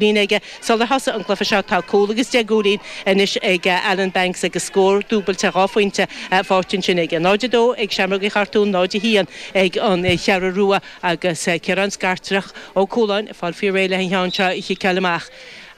líne aige sular thosaigh an cluiche seo. Tá cúl agus deich gcúilín anois ag Alan Banks agus scór dúbailte dhá phointe faighte ansin aige. 0-2 ag Seamrógaí Chartúin, 0-1 ag an gCeathrú Rua agus Ciarán Scartach Ó Cualáin ag fáil faoi réir le an ceann seo a chiceáil amach.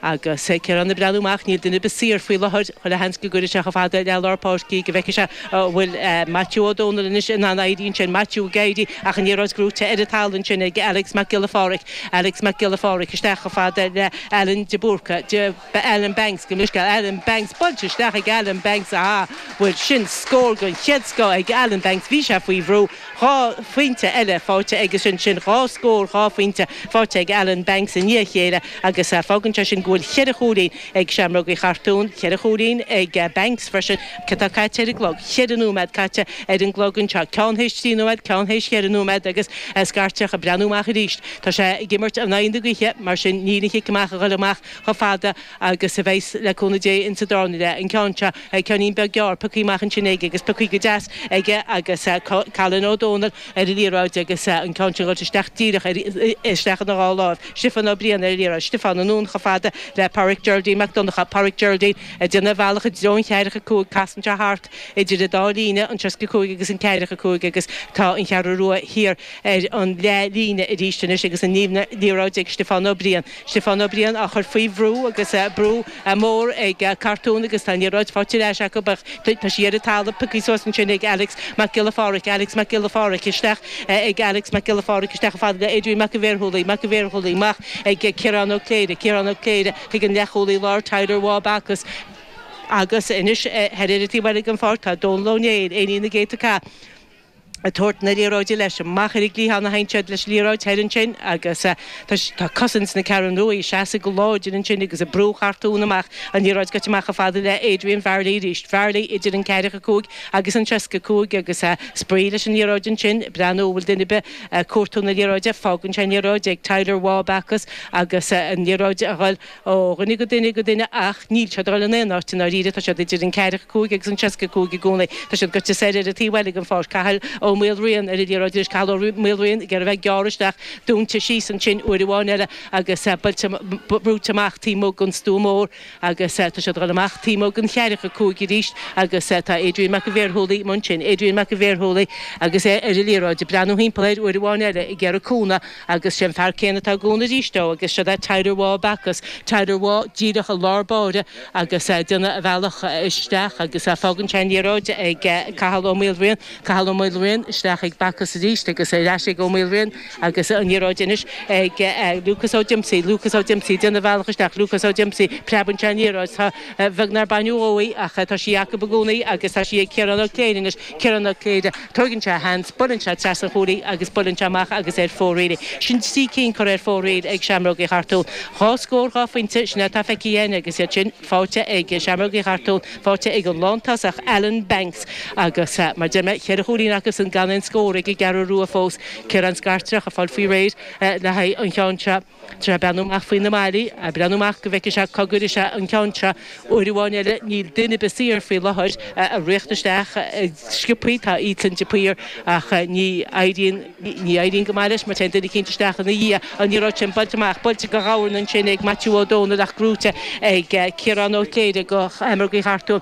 Agus Ciarán ag breathnú amach, níl duine ar bith saor faoi láthair, chuile sheans go gcuirfidh sé chomh fada le lár páirce í go bhfeicfidh sé an bhfuil Maitiú Ó Domhnaill anois in ann éirí ansin. Maitiú ag éirí ach an liathróid gnóite ar an talamh ansin ag Alex Mac Giolla Phádraig. Alex Mac Giolla Phádraig isteach chomh fada le Alan de Búrca, de Ba Alan Banks gabh mo leithscéal Alan Banks Buailte isteach ag Alan Banks Aha bhuel sin scór den chéad scoth ag Alan Banks Bhí sé faoi bhrú Dhá phointe eile faighte aige sin sin dhá scór dhá phointe faighte ag Alan Banks i ndiaidh a chéile agus fágann sé sin go bhfuil cheithre chúilín ag Seamrógaí Chartúin, ceithre chúilín ag Banks freisin, cé atá caite ar an gclog? Cheithre nóiméad caite ar an gclog anseo, ceann théis trí nóiméad, ceann théis cheithre nóiméad agus Scartach ag breathnú amach arís. Tá sé ag imirt in aghaidh na gaoithe, mar sin níl an chic amach a ghoil amach chomh fada agus a bheas le cúnamh Dé ins an darna leath, an ceann seo. Ceannín beag gearr, pioctha amach ansin aige agus pioctha go deas aige agus Cailin Ó Domhnaill, ar an liathróid agus an ceann sin buailte isteach díreach ar, isteach ina dhá láimh, Stiofán Ó Briain ar an liathróid, Stiofán anonn chomh fada le Páraic Geraldine Mac Donncha, Páraic Geraldine ag déanamh a bhealach i dtreo an cheathracha a cúig, casann sé thart idir an dá líne, an seasca a cúig agus an ceathracha a cúig agus tá an Cheathrú Rua thiar ar an leath líne arís anois agus an liathróid ag Stiofán Ó Briain. Stiofán Ó Briain á chur faoi bhrú agus brú mór ag Cartún agus tá an liathróid faighte ar ais acu ach tá sí ar an talamh, pioctha suas ansin ag Alex Mac Giolla Pháraic, Alex Mac Giolla Pháraic, isteach ag Alex Mac Giolla Pháraic, isteach chomh fada le Adrian Mac an Bhearshúiligh, Mac an Bhearshúiligh, amach ag Ciarán Ó Cléire, Ciarán Ó Cléire chuig an leathchúlaí láir Tyler Waugh Backus agus anois thoir ar an taobh eile den pháirc tá Dónal Ó Néill, Éinín na gcéadta cath. ag tabhairt na liathróide leis amach ar an gcliathán a théann siad leis an liathróid thoir ansin agus tá cosaint na Ceathrún Ruaidh ag seasamh go láidir ansin agus ag brú Chartún amach, an liathróid goite amach chomh fada le Adrian Varley arís, Varley idir an ceathracha a cúig agus an seasca a cúig agus spraoi leis an liathróid ansin ag breathnú an bhfuil duine ar bith ag cuartú na liathróide, fágann sé an liathróid ag Tyler Waugh-Backus agus an liathróid a dhul. ó dhuine go duine go duine ach níl siad ag dul in aon áit i ndáiríre, tá siad idir an 45 agus an 65 i gcónaí, tá siad gaibhte soir ar an taobh eile den pháirc, Cathal Ó Maoilriain ar an liathróid arís, Cathal Ó Maoilriain ag iarraidh a bheith ag gearradh isteach, dúinte síos ansin uair amháin eile agus brúite amach taobh amuigh den stua mór agus tá siad ag dul amach taobh amuigh den cheathracha a cúig arís agus tá Adrian Mac an Bhearshúiligh amuigh ansin, Adrian Mac an Bhearshúiligh agus é ar an liathróid, ag breathnú thimpeall air uair amháin eile, ag iarraidh cúnamh. Agus 'sé an fear céanna atá ag cúnamh arís dó, agus siod é Tyre Bhá Bacchus, Tyre Bhá díreach i lár báire, agus déanamh a bhealach isteach, agus fágann sé an liathróid ag Cathal Ó Maoilriain, Cathal Ó Maoilriain, isteach ag Bacchus arís, agus ar ais ag Ó Maoilriain, agus an liathróid anois ag Lúcás Ó Díomsaigh, Lúcás Ó Díomsaigh, ag déanamh a bhealach isteach, Lúcás Ó Díomsaigh, preabann sé an liathróid, tá, beag nár baineadh dhó í, ach tá sí acu i gcónaí, agus tá sí ag Ciarán Ó Cléirigh anois, Ciarán Ó Cléirigh, tóigeann sé a sheans, buaileann sé trasna an chúil í agus buaileann sé amach agus ar fóraoil'. Sin trí cinn curtha ar fóraoil ag Seamrógaí Chartúin. Dhá scór dhá phointe, sin é atá feicthe againn agus iad sin faighte ag Seamrógaí Chartúin, faighte ag an lántosach Alan Banks agus, mar a deir mé, cheithre chúilín acusan gan aon scór ag an gCeathrú Rua fós. Ciarán Scartreach, ag fáil faoi réir le haghaidh an cheann seo. Tá sé ag breathnú amach faoi na malaí, a' breathnú amach go bhfeice sé cá gcuire sé an ceann seo. Uair amháin eile níl duine 'bith saor faoi láthair ag tíocht isteach go sciobtha, tá Ethan de Paor ach ní éiríonn, ní éiríonn go maith leis mar téann duine eicínt isteach ina dhiaidh. An liathróid sin buailte amach, buailte go ghabhar ansin ag Maitiú Ó Dónaill ach gnóite ag Ciarán Ó Cléirigh do Sheamrógaí Chartúin.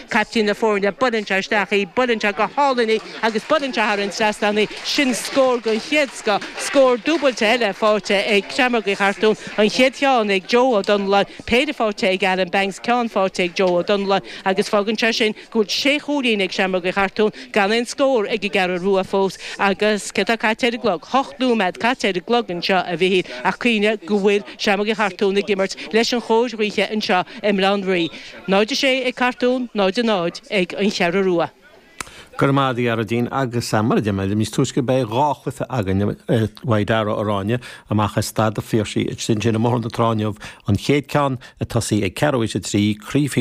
caiptín na foirne, buaileann sé isteach í, buaileann sé go hálainn í agus buaileann sé thar an trasnán í, sin scór den chéad scoth, scór dúbailte eile faighte ag Seamrógaí Chartúin, an chéad cheann ag Joe Ó Donnláin, péire faighte ag Alan Banks, ceann faighte ag Joe Ó Donnláin agus fágann sé sin go bhfuil sé chúilín ag Seamrógaí Chartúin, gan aon scór ag an gCeathrú Rua fós agus céard atá caite ar an gclog? ocht nóiméad caite ar an gclog anseo a Mhichíl ach cuimhnigh go bhfuil Seamrógaí Chartúin ag imirt leis an chóir ghaoithe anseo i mBaile Átha an Rí. 0 6 ag Cartún 0 0 ag An Cheathrú Rua. Go raibh maith agat a Ghearóidín, agus mar a deir mé níos túisce beidh dhá chluiche againn i Mhaigh Dara aráin, amach as Staid a' Phiarsaigh, ansin i mBóthar na Trá inniu an chéad cheann, ag tosaí ag ceathrú tar éis a trí, Craobh